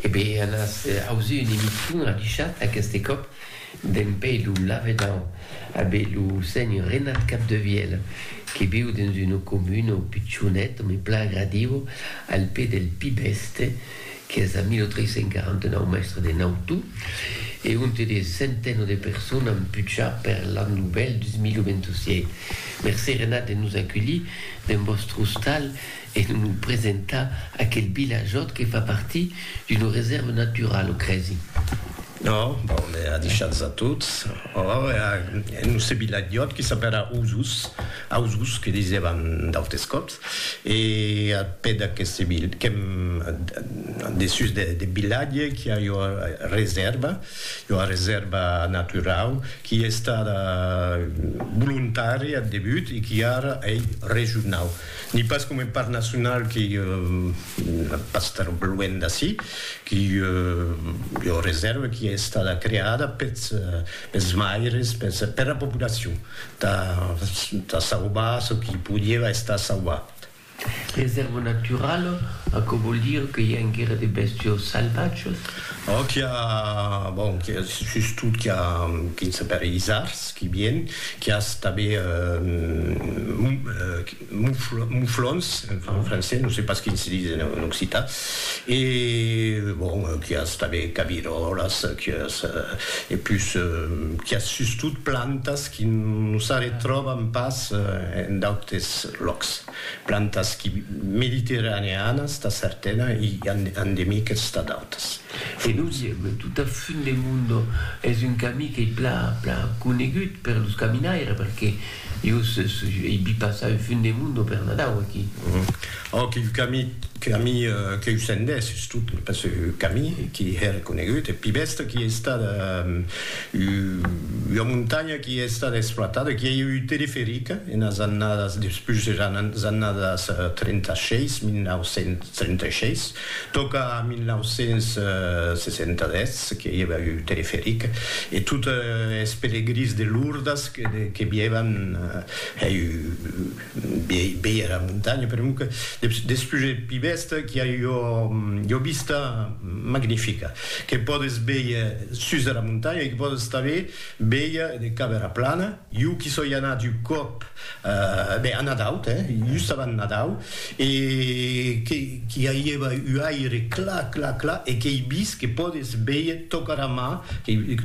E be an as ausi un emission adichat aqueste còp d'en pei lo lavedan a be lo senhor Renat Capdevièl que viu dens una comuna pichonet me plan agradiu al pè del Pi Bèste qu'es a 1349 mèstre de Nautu e onte de centeno de persona an puchar per l'an novèl 2027. Mercé Renat de nos aculhir dens vòstre ostal. e de nos presentar aquel vilajòt que fa partir d'una resèrva naturala, o crèsi? No, bon, me a deishats a tots. Or, e a noste vilajòt que s'apèra Osos, Ausos que disèvan d'autes còps, e a pè d'aqueste vil, qu'èm dessús deth vilatge, qu'i a ua resèrva, ua resèrva naturau, qui ei estada volontària ath debut e qui ara ei regionau. Ni pas coma un parc nacional qui pas tan luènh d'ací, qui ei ua resèrva qui ei estada creada pels maires, pera populacion, tà sauvar çò qui podieva estar sauvat. Resèrva naturala, aquò vòl dire que i a enguera de bèstios salvatges? Ò, qu'i a, bon, qu'i a sustot qu'i a quin se per isards qui vien, qu'i as tabé mouflons, enfin en français, non se pas quin se dis en occitan, e bon, qu'i as tabé cabiròlas, qu'i as, e pus, qu'i as sustot plantas qui non s'arretròban pas en d'autes lòcs. Plantas qui mediterraneanas tà certana i endemiques tà d'autas. E nos i èm tot a fund de Mundo, es un camí qu'ei pla pla conegut per los caminaires perque jo ei vi passar au fund de Mundo per Nadau aquí. Òc, il camí camí qu'eu sendés es tot pas eu camí qui hè reconegut, eth pi bèsta qui ei estada. Ua montanha qui a estat exploitada, qui a ieu un teleferic enas annadas, despús eras annadas 36, 1936, tòca a 1967 que i ava un teleferic e tot es pelegrins de Lourdes que vievan hèi Viei era montanha per un despuget pi bèsta qu'i a ua vista magnifica que pòdes véier sus dera montanha e que pòdes tanben véier de cap era plana. Jo qu'i soi anat un còp a Nadau, just avant Nadau, e qu'i aieva un aire clar, clar, clar e qu'ei vist que pòdes véier tòca era mar,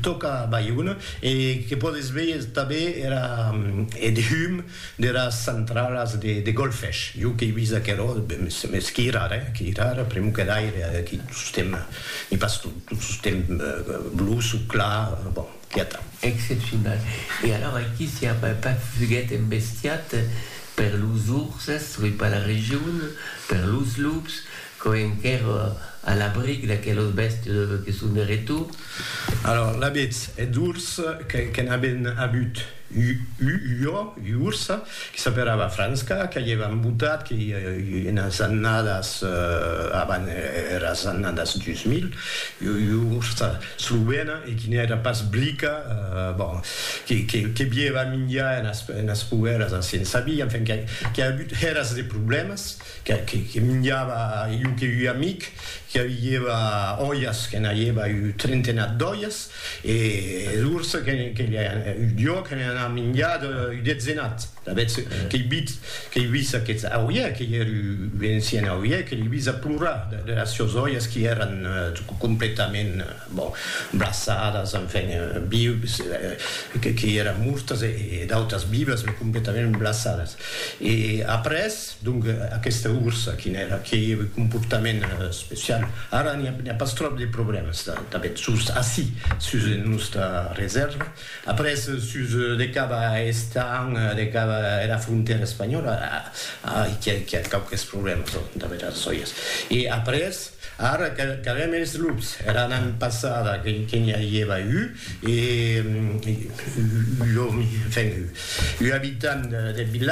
tòca Baiona e que pòdes véier tanben era, eth hum deras centralas de golfech. Jo qu'ei vist aquerò, mès qu'ei rar, eh, qu'ei rar, pr'amor que d'aire, aqui tostemp n'i pas tot, tot tostemp bluç o clar, bon, quieta. Excepcional. E alors aquí s'i a pas fuguet embestiat per los urses, soi pas la region, per los lups, Quò enquèr a l'abric d'aquelos bèstes que son de retor. Alòr, l'abetz eth urs que n'aben avut ua ua ursa que s'aperava Franska, qu'aievan embotat que i enas annadas avant eras annadas 2000, ua ursa slovena e qui n'èra pas blica, bon, que bieva minjar enas poeras a Sensabí, enfin, qu'a avut eras de problèmas. que minjava io que ui amic que aviieva oias que n'aieva ui trentenat d'oias e d'urs que io que ne n'ha minjat ui detzenat d'avetz que i bit que i vis aqueth auie que i er ui encien auie que li vis a plorar de las sios oias qui eran completament bon braçadas enfin vius que i eran mortas e d'autas vivas me completament braçadas e après Donc aquesta ursa quin èra? Qué comportament especial? Ara n'i a pas tròp de problèmas tanben sus ací, sus nosta resèrva. Après sus de cap a Estañ, de cap a era frontèra espanhòla, ai qu'i a quauques problèmas damb era sòias. E après, ara qu'avèm es lups, era nan passada que n'i avieva un, un òmi, enfin un abitant deth vilatge,